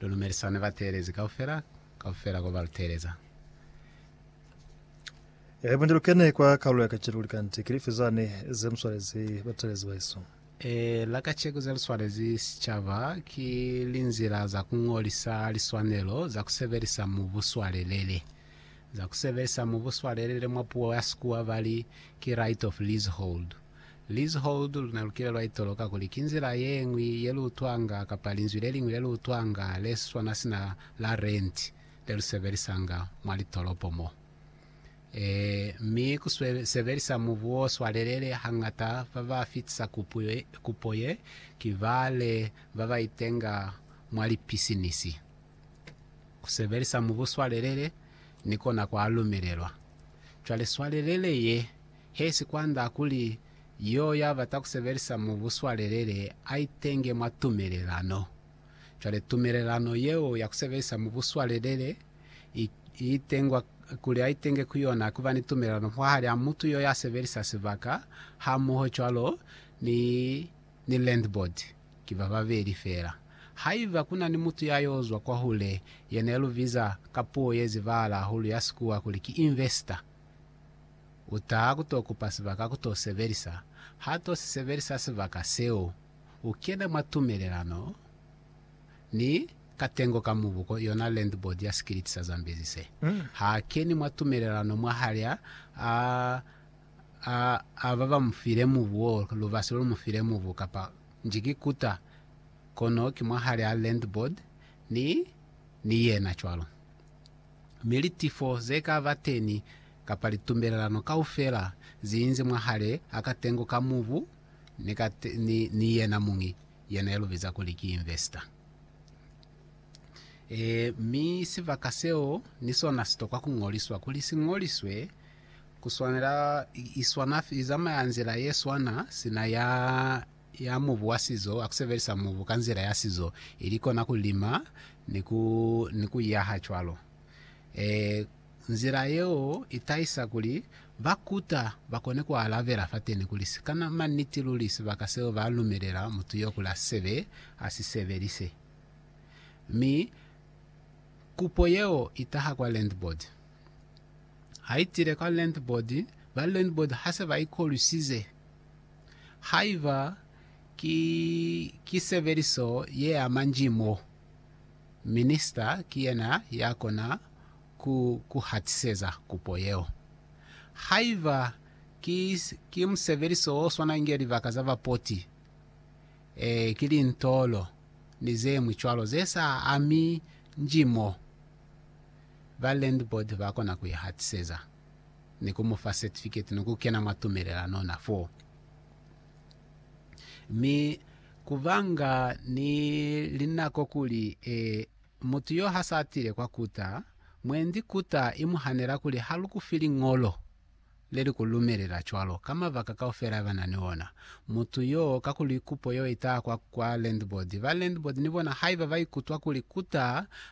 Lu lumelisa ne ba teelezi kaufela, kaufela ko ba lu teeleza. Ehe, bunde lu kene kwa kalulo ya kacenu. Likanti ki lifi zane ze mu swalezi bateelezi bahesu? Ee, la kaceku ze lu swalezi sicaba ki linzila za ku ñolisa liswanelo za ku sebelisa mu buswalelele. Za ku sebelisa mu buswalelele mwa puo ya Sikuwa ba li ki right of leasehold. Lizhold luna lukile lwa itoloka kuli ki nzila ye ñwi ye lu utwanga kapa linzwi le liñwi le lu utwanga le swana sina la rent le lu sebelisanga mwa litolopo mo. Ee, mi ku sebelisa mubu o swalelele hañata ba ba fitisa kupo ye ki bale ba ba itenga mwa lipisinisi. Ku sebelisa mubu swalelele ni kona kwa lumelelwa. Cwale swalelele ye He sikwanda kuli yo ya bata ku sebelisa mubu swalelele a itenge mwa tumelelano. Cwale tumelelano yeo ya ku sebelisa mubu swalelele i, i itengwa kuli a itenge ku yona ku ba ni tumelelano mwahal'a mutu yo ya sebelisa sibaka hamoho cwalo ni, ni landlord. Ki ba babeli fela. Haiba ku na ni mutu ya yo zwa kwahule, yena ye lu biza ka puo ye zibahala hahulu ya Sikuwa kuli ki investor, U taha ku to kupa sibaka ku to sebelisa. Ha to si sebelisa sibaka seo, u kena mwa tumelelano ni katengo ka mubuko, yona Land Board ya sikiliti sa Zambezi se. Ha keni mwa tumelelano mwahal'a a, a, a ba ba mu file mubu wo, lubasi lo lu mu file mubu, kapa nji ki kuta, kono ki mwahal'a Land Board ni, ni yena cwalo. Mi litifo ze ka ba teni kapa litumbelelano kaufela ziinzi mwahale a katengo ka mubu ni ka ni, ni yena muñi yena ya lubiza kuli ki investor. E, mi sibaka seo ni sona sitokwa kuñoliswa. Kuli siñoliswe, kuswanela iswana, izamaya nzila yeswana sina ya ya mubu wa sizo, ya kusebelisa mubu ka nzila ya sizo, ili kona kulima ni ku ni kuyaha cwalo. E, Nzila yeo i tahisa kuli ba kuta ba kone ku alabela fateni kuli si ka na maniti luli sibaka seo ba lumelela mutu yo kuli a sebe a si sebelise. Mi kupo yeo i taha kwa landboard. Ha i tile kwa landboard, ba landboard ha se ba i kolwisize haiba ki, ki sebeliso ye ama nji mo, Minista ki yena ya kona ku ku hatiseza kupo yeo. Haiba ki, ki musebeliso o swana inge libaka za bapoti, ee, ki lintolo ni zeñwi cwalo ze sa ami nji mo, ba landboard ba kona ku i hatiseza ni ku mu fa certificate ni ku kena mwa tumelelano na foo. Mi kubanga ni linako kuli e, mutu yo ha sa tile kwa kuta, mwendi kuta i mu hanela kuli ha lu ku fi liñolo le li ku lumelela cwalo, ka mabaka kaufela ba na ni ona. Mutu yo, kakuli kupo yo i taha kwa, kwa landlord, ba landlord ni bona haiba ba ikutwa kuli kuta